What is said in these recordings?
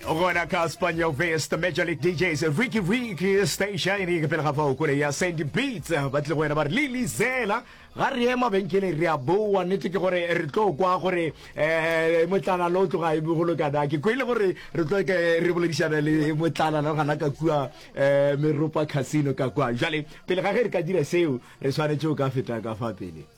gona ka spaniel vest major league djs ricky ricky stationing pele ga fao kole ya sandy beats ba tle go wena ba re lili zela ga re ye mabenkeleng re a boa nnete ke gore re tlo kwa gore um motlana lo tloga e bogolo kana ke kwele gore re tlo ke re boledišana le motlana lo gana ka kua um meropa casino ka kwa jale pele ga ge re ka dira seo re tshwanetse o ka feta ka fa pele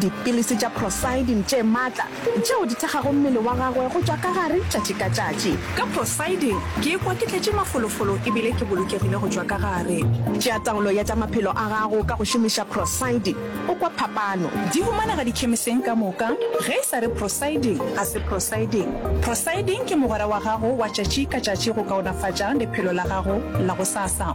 Dipilisi tša prosidin tše matla tšeo di thekgago mmele wa gagwe go tšwa ka gare tšatši ka tšatši. Ka prosidin ke ikwa ke tletše mafolofolo e bile ke bolokegile go tšwa ka gare. Tšea taolo ya tša maphelo a gago ka go šomiša prosidin, o kwa phapano. Di humanega dikhemiseng ka moka. Ge e sa re prosidin, ga se prosidin. Prosidin ke mogwera wa gago wa tšatši ka tšatši go kaonafatša lephelo la gago la gosasa.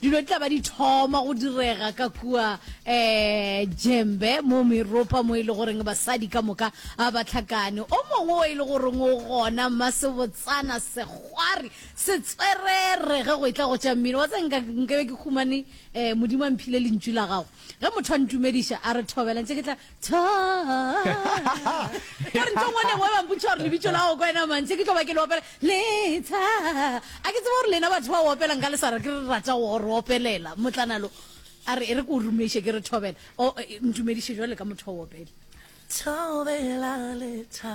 Dilo di tla ba di thoma go direga ka kua um Jembe mo Meropa mo e le goreng basadi ka moka a ba tlhakane. O mongwe o e le goreng o gona Mmasebotsana Segwari Setswerere ge go e tla go tša mmino. Wa tse nka nkabe ke humane um Modimo a mphile lentšu la gago. Ge motho a ntumediša a re thobela ntše ke tla gore ntho ngwe le ngwe ba mpotsa gore lebitso la go kwena mantse ke tlo ba ke le opela letsha a ke tseba gore lena batho ba opelang ka lesara ke re rata go re opelela motlanalo a re e re ko rumeše ke re thobela ntumediše jwa le ka motho wa opele thobela letsha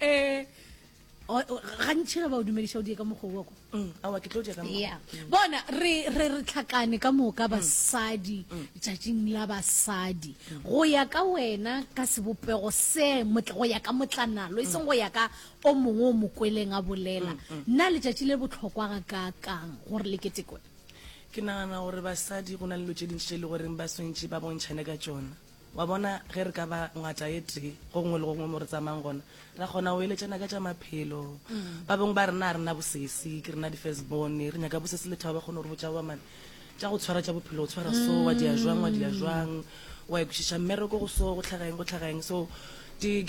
eh gantšhi ge ba o dumediša o die ka mokgowa ko mm, awa ke tlo die ka ya mm. bona re re re tlhakane ka moka mm. basadi tšatšing la basadi go ya ka wena ka sebopego se go ya ka motlanalo e seng go ya ka o mongwe o mokweleng a bolela nna letšatši le botlhokwa ga ka kang gore le ketekwe ke nagana gore basadi go na le lo tse dintšhi tse e le goreng ba swantšhe ba bontšhane ka tsona Wa bona, ge re ka ba ngwatša e tee go gongwe le go gongwe mo re tsamayang gona, ra kgona go eletšana ka tša maphelo. Ba bangwe ba rena ga re na bosesi, ke rena di-firstborn, re nyaka bosesi le thabo, ba kgona go re botša goba mane tša go tshwara tša bophelo, go tshwara so, wa di ya jwang, wa di ya jwang, wa ya kwešiša mmereko go so, go tlhaga eng, go tlhaga eng. So di get.